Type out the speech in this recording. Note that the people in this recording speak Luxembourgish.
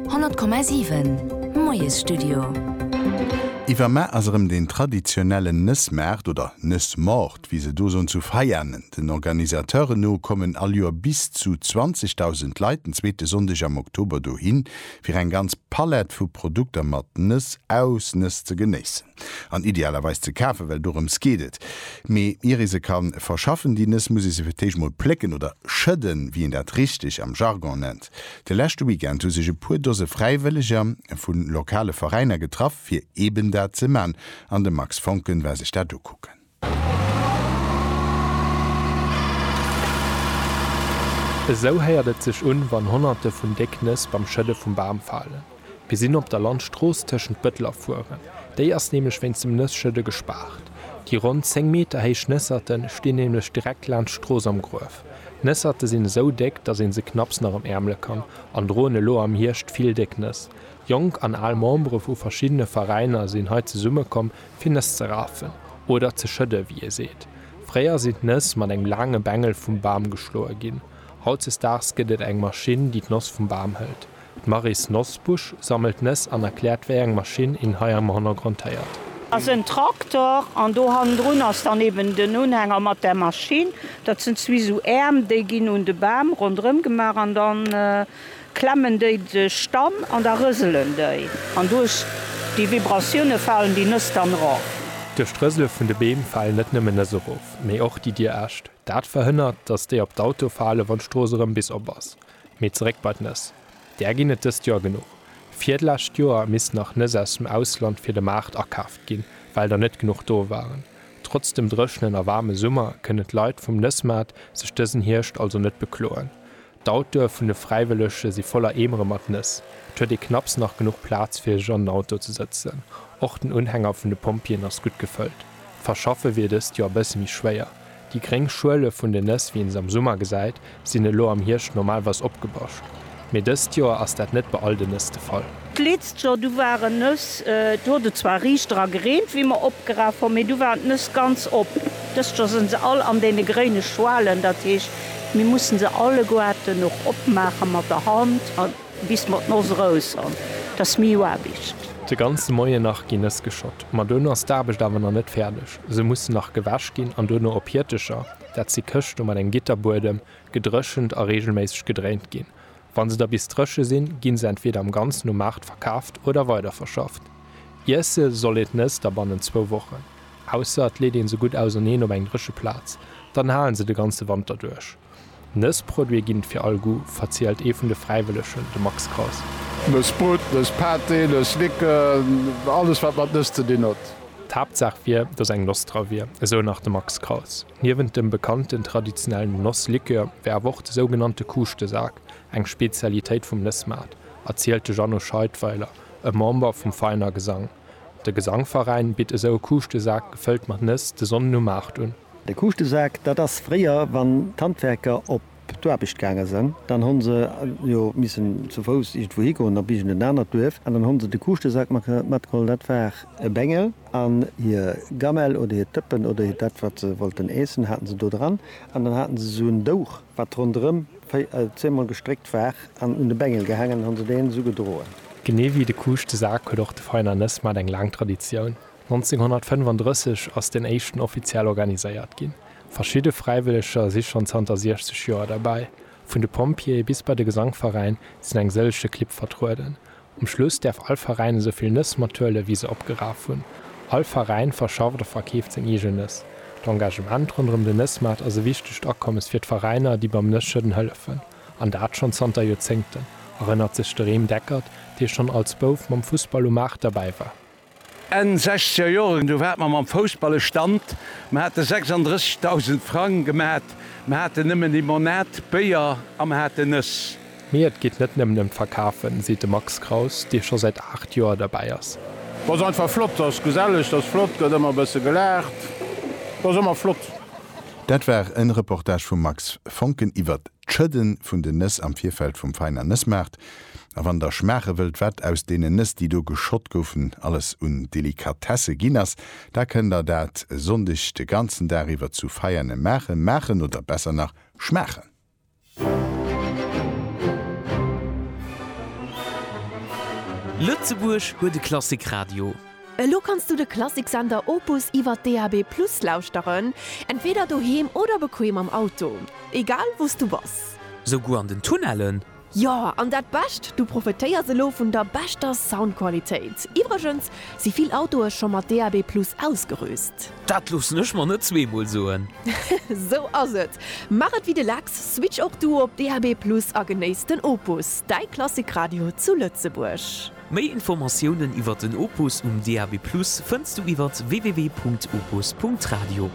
100,7 Moiesstudio. Iwwer Mar ass erëm deen traditionellen Nëssmaart, oder Nëssmort, wéi se do soen, zu Veianen. Den Organisateuren no kommen all Joer bis zu 20.000 Leit den zweete Sonndeg am Oktober dohin, fir eng ganz Palett vu Produkter mat Nëss aus Nëss ze genéissen. an idealerweis ze kafen, well dorëms geet et. Mee ier ee se ka verschaffen, déi Nëss, muss ee se fir d'éischt emol plécken oder schëdden, wéi een dat richteg am Jargon nennt. De leschte Weekend hu sech e puer Dose Fräiwëlleger vu lokale Veräiner getraff, fir eben dat ze man, an de Max Foncken war sech dat ukucken. Esou héiert et sech un, wann Honnerte vun déck Nëss beim Schëdde vum Bam falen. Mir sinn op der Landstrooss tëschent Bëttel a Furen. Déi ass nämlech wéinst dem Nësschëdde gespaart. Déi ronn 10 Meter héich Nësserte stinn nämlech direkt laanscht d'Strooss am Gruef. D'Nësserte sinn esou déck, datt ee se knapps nach emäermele kann an droen elo am Hierscht vill déck Nëss. Jonk an al Membere vu verschiddene Veräiner sinn hei zesummekomm, fir Nëss ze rafen oder ze schëdden, wéi ee seet. Fréier sinn d'Nëss mat engem laange Bengel vum Bam geschloe ginn. Hautzesdaags gëtt et eng Maschinn, déi d'Noss vum Bam hëlt. D'Maryse Nosbusch sammelt d'Nëss an erkläert, wéi eng Maschinn een hei am Hannergrond héiert. Ass en Traktor an do hannendrun ass dann eben den Unhänger mat der Maschinn. Dat sinn zwee esou Äerm, déi ginn un de Bam ronderëm gemaach an dann. klemmen déi sech dann an da rëselen déi an duerch déi Vibratioune falen déi Nëss dann erof. Duerch d'Rësele vun de Beem falen net nëmmen Nëss erof, mee och déi dir Äscht. Dat verhënnert, datt déi op d'Autoe falen, wann d'Strooss erëm bis op ass. Mee zeréck bei d'Nëss. Där ginn et dëst Joer genuch. Vir d'lescht Joer missten nach Nëss aus dem Ausland fir de Maart akaaft ginn, well der net genuch do waren. Trotz dem dréchenen a waarme Summer kënnen d'Leit vum Nëssmaart sech dësen Hierscht also net bekloen. D'Autoe vun de Fräiwëllege si voller Eemere mat Nëss. Et huet ee knapps nach genuch Plaz fir sech an den Auto ze sëtzen. Och den Unhänger vun de Pompjeeën ass gutt gefëllt. D'Verschaffe wier dëst Joer e bësse méi schwéier. Déi gréng Schuele vun den Nëss, wéi een se am Summer gesäit, sinn elo am Hierscht normalweis opgebascht. Mee dëst Joer ass dat net bei all den Nëss de Fall. D'leetzt Joer, du waren Nëss, do huet et zwar riicht dra gereent, wéi mer opgeraf hun, mee du waren d'Nëss ganz op. Dëst Joer sen se all an deene gréine Schwalen, dat heescht, mir mussen se alleguerten och opmaachen mat der Hand an bis mer d'Noss rous han. T'ass miu Aarbicht. De ganze Moien nach gin Nëss geschott, ma duerno ass d'Aarbecht awer na nët färdeg. Se mussen nach gewäsch gin an duerno op Hiertecher, dat si Këschte mat engem Gitterbuedem, gedrëchent a regelméisseg gedréint gin. Wa se da bis dréche sinn, gi se entweeder am Ganzen um Maart verkaaft oder weiderverschafft. Iesse soll een d'Nëss da bannent zwou Wochen, ausser et leet een se gutt auserneen op eng dréche Plaz, dann halen se de ganze Wanter duerch. Nëssproduite ginn et fir all Goût, verzielt ee vun de Fräiwëllegen, de Max Kraus. Nëss Brut, Nëss Pâté, Nëss Liqueuren, alles wat mat Nëss ze dinn huet. D'Haaptsaach wier, datt eng Noss dra wier, esou nach de Max Kraus. Niewent dem bekannten traditionellen Nosslikör wär awer och de sougenannte Kuuschtesak eng Spezialitéit vum Nëssmaart, erzielt de Jeannot Scheidweiler, e Member vum Veiner Gesang. De Gesangveräin bitt esou e Kuuschtesak gefëllt mat Nëss de Sonnden um Maart un. De Kuuschtesak, dat ass fréier, wann d'Handwerker op d'Aarbecht gaange sënn, dann hu se jo missen zu Fouss iergendwou higoen, op iergend en anert Duerf, an dann hu se de Kuuschtesak matgeholl, dat war e Bengel. An hir Gamelle oder hir Tëppen oder hir dat, wat se wollten äessen, haten se do dran. An dann haten se esou en Douch, wat ronderëm zehnmol gestréckt war an un de Bengel gehaangen, an hunn se deen esou gedroen. Genee wéi de Kuuscht de Sak huet och de Veiner Nëssmat eng laang Traditioun. 1935 ass deen éischten offiziell organiséiert ginn. Verschidde Fräiwëlleger si schonn zanter 60 Joer derbäi. Vun de Pompjeeë bis bei de Gesangveräin sinn eng sëllege Clibb vertrueden. Um Schluss däerf all Veräin esou vill Nëss mat huelen, wéi se opgeraf hunn. All Veräin verschafft a verkeeft seng eegen Nëss. D'Engagement ronderëm den Nëssmaart ass e wichtegt Akommes fir d'Veräiner, déi beim Nësschëdden hëllefen, an dat schonn zanter Joerzéngten, erënnert sech de Rem Deckert, dee schonn als Bouf mam Fussball um Maart derbäi war. Enn sechzeger Joren, du waart mer mam Foussballe Stand, mer hate 36.000 Frang gemat, mer haten nëmmen Limonade, Béier a mer haten Nëss. Mee et geet net nëmmen ëm d'Verkafen, seet de Max Kraus, dee scho säit 8 Joer derbäi ass. T'ass einfach flott, t'ass geselleg, t'ass flott, gëtt ëmmer e bësse gelaacht, t'ass ëmmer flott. Dat war en Reportage vum Max Foncken iwwert D'Schëdden vun den Nëss am Virfeld vum Veiner Nëssmaart a wann der schmaache wëllt wat aus deenen Nëss déi do geschott goufen alles un Delikatesse ginn ass, da kënnt der dat e Sonndeg de ganzen Dag iwwer zu Veiane maachen, maachen oder besser nach schmaachen. Lëtzebuerg huet e Klassik Radio. Elo kanns du de Klassiksender Opus iwwer DAB+ lauschteren, entweder doheem oder bequem am Auto, egal wou s du bass. Souguer an den Tunnellen? Jo, an dat Bescht, du profetéiers elo vun der beschter Soundqualitéit. Iwwregens si vill Autoe scho mat DAB+ ausgerüst. Dat loossen ech mer net zweemol soen. Sou ass et! Maach et wéi de Lex, switch och du op DAB+ a genéiss den Opus, däi Klassikradio zu Lëtzebuerg. Méi Informatiounen iwwer den Opus um DAB+ fënns du iwwer www.opus.radio.